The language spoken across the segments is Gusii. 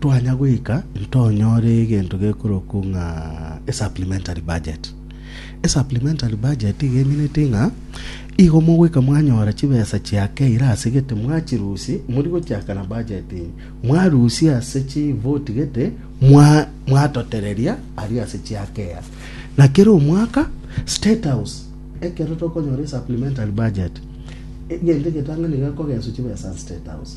Twanya goika ntonyore egento gekorokwa ng'a esupplementary budget. Esupplementary budget iga emineti ng'a igo mogoika mwanyora chibesa chiakeire ase gete mwachirusi mori gochiaka na budget enye mwarusi ase chivoti gete mwa mwatotereria aria ase chiakei ase na kera omwaka state house ekero tokonyora esupplementary budget egento egetang'ani gekogeswa chibesa ase state house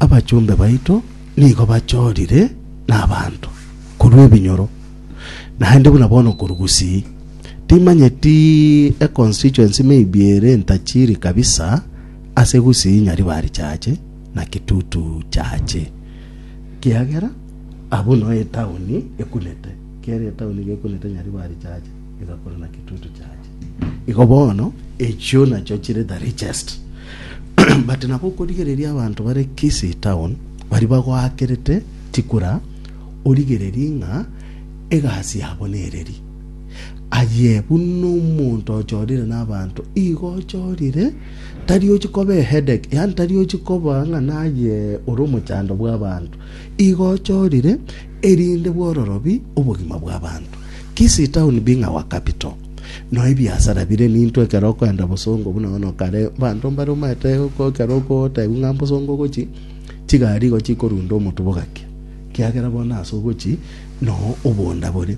Abachombe baito nigo bachorire nabaanto korwa ebinyoro, naende buna bono korwa Gusii. Timanyeti econstituency maybe ere ntachiri kabisa ase Gusii, Nyaribari chaache na Kitutu chaache. Kiagera abwo noe etauni ekunete, kera etauni gekunete Nyaribari chaache egakora na Kitutu chaache. Igo bono, echio nachio chire the richest. But nabo okorigereria abanto bare Kisii town baria bagoakerete tikura, origererie ng'a egasi yabo nereri. Aye buna omonto ochorire nabanto igo ochorire, tari ochi koba eheadache, yaani tari ochi koba ng'a naye ore omochando bw'abanto. Igo ochorire erinde bwororobi obogima bw'abanto. Kisii town being our capital, no ebiasara bire ninto ekero okoenda bosongo buna bono kare abanto mbare omaete ko ekero okotebiwa ng'a mbosongo ogochi chigari igo chikorunda omotubo gaki kiagera bono ase ogochi no obonda bore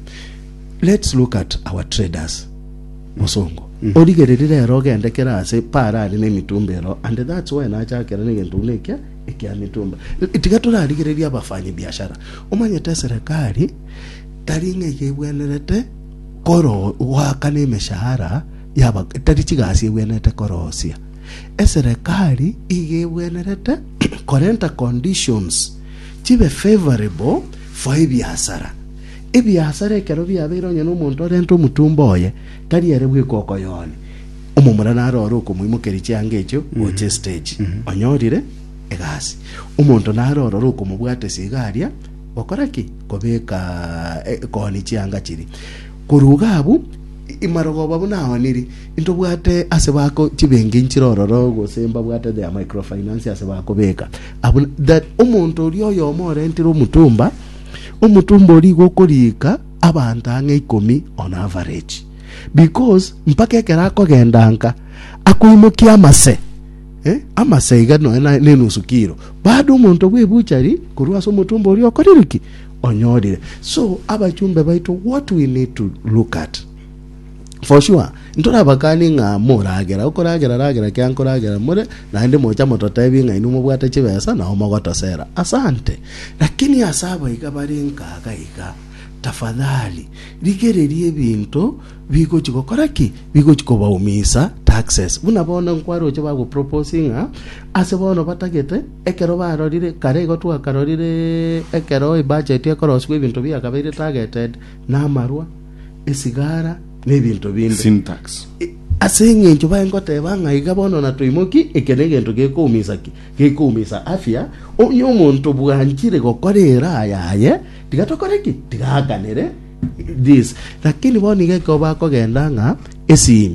let's look at our traders bosongo origereri rero ogende kere ase para are nemitumba ero and that's why nachakera negento buna ekia ekia mitumba tiga torarigereria abafanyi biashara omanyete serikali tari ng'a iga ebwenerete koroo goaka nemeshahara yaba tari chigasi ebwenerete korosia. Eserekari iga ebwenerete korenta conditions chibe favorable for ebiasara. Ebiasara ekero biabeire onye na omonto orente omotumba oye, tari ere bweka okoyoonia. Omomura naro ore okomoimokeria chianga echio gocha estage. Onyorire egasi. Omonto naro ororo okomobwatesa iga aria Gokora ki? Kobeka ekooni chianga chiria. Korwa iga abwo, imarogoba buna aoniri, intobwate ase bako chibenki nchire ororo, gose mbabwate their microfinance ase bakobeka. Abuna that omonto oria oyomo orentire omutumba, omutumba oria igo okorika abanto ang'e ikomi on average. Because mpaka ekero akogenda nka, akoimokia amase, Eh, amasa iga nonya na- nenusu kilo baada omonto bw'ebuchari korwa ase omotumba oria okorire ki onyorire so abachumbe baito what we need to look at for sure ntorabakani ng'a moragera okoragera ragera kia nkoragera more naende mocha mototebi ng'a inwe mobwate chibesa nao mogotosera asante lakini ase abaiga bare nkaga iga tafadhali rigereria ebinto Bigochi gokora ki? Bigochi kobaumiisa taxes. Buna bono nkwaroche bagoproposi ng'a ase bono batagete, ekero barorire, kare igo twakarorire ekero ebudget ekorosiwa ebinto biakabeire targeted na amarwa, esigara na ebinto binde. Sin tax. Ase eng'encho baye ngoteba ng'a iga bono na toimoki, eke negento gekoumiisa ki? Gekoumiisa afya. Onye omonto bwanchire gokora eraa yaye, tiga tokore ki? Tiga aakanere. this. Lakini bono nigo ekobakogenda ng'a esimi.